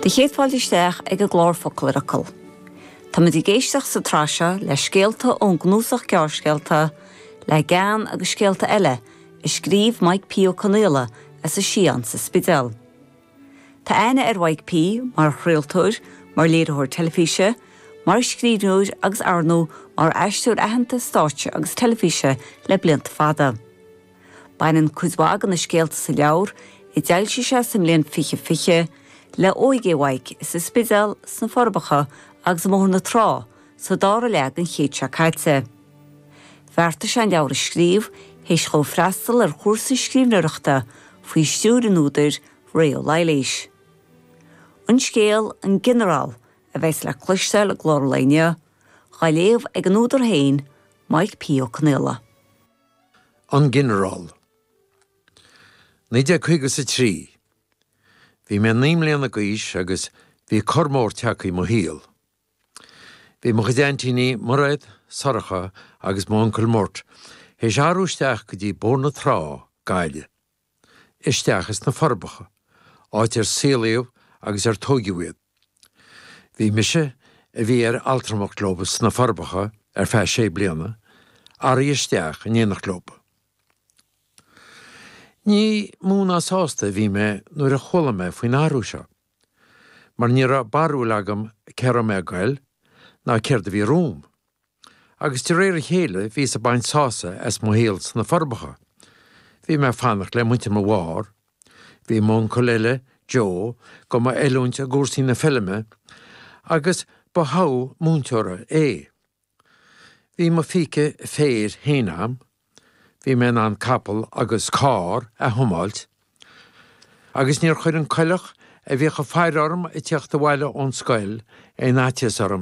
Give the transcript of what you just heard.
Do chéad fáilte isteach ag an gclár Focal ar Fhocal. Tá muid ag éisteacht sa tsraith seo le scéalta ón gcnuasach gearrscéalta Le Gean agus Scéalta Eile a scríobh Maidhc P. Ó Conaola as an Sián sa Spidéal. Tá aithne ar Mhaidhc P. mar chraoltóir, mar léiritheoir teilifíse, mar scríbhneoir agus arnó mar aisteoir aitheanta stáitse agus teilifíse le blianta fada. Baineann cuid mhaith de na scéalta sa leabhar, a d'fhoilsigh sé sa mbliain fiche fiche, le óige Mhaidhc sa Spidéal, sna Forbacha agus i mBóthar na Trá sa dara leath den chéad seo caite. Bheartaigh sé an leabhar a scríobh théis dhó freastal ar chúrsa scríbhneoireachta faoi stiúir an údair, Ré Ó Laighléis. An scéal, An Ginearál, a bheas le cloisteáil i gclár an lae inniu, dhá léamh ag an údar féin, Maidhc P. Ó Conaola. An Ginearál. 1950 's a 3. Bhí mé naoi mbliana d'aois agus bhí cor mór teagtha i mo shaol. Bhí mo chuid aintíní, Mairéad, Sorcha agus m'uncail Murt th'éis athrú isteach go dtí Bóthar na Trá, Gaillimh. Isteach as na Forbacha, áit ar saolaíodh agus ar tóigeadh iad. Bhí mise, a bhí ar altramacht leo sna Forbacha ar feadh sé bliana, athraithe isteach in éineacht leo. Ní mó ná sásta a bhí mé nuair a chuala mé faoin athrú seo. mar ní raibh barúil agam cé raibh mé ag goil ná céard a bhí romham. Agus de réir a chéile bhíos ag baint sása as mo shaol sna Forbacha. Bhí mé ag fanacht le muintir mo mháthar. Bhí m'uncail eile, Joe, dho mo oiliúint i gcúrsaí na feilme agus ba thogha múinteora é. Bhí mo phíce féir fhéin agam, bhí mé in ann capall agus cárr a thiomáilt, agus níor chuir an coileach a bhíodh ag faire orm ag tíocht abhaile ón scoil aon fhaitíos orm.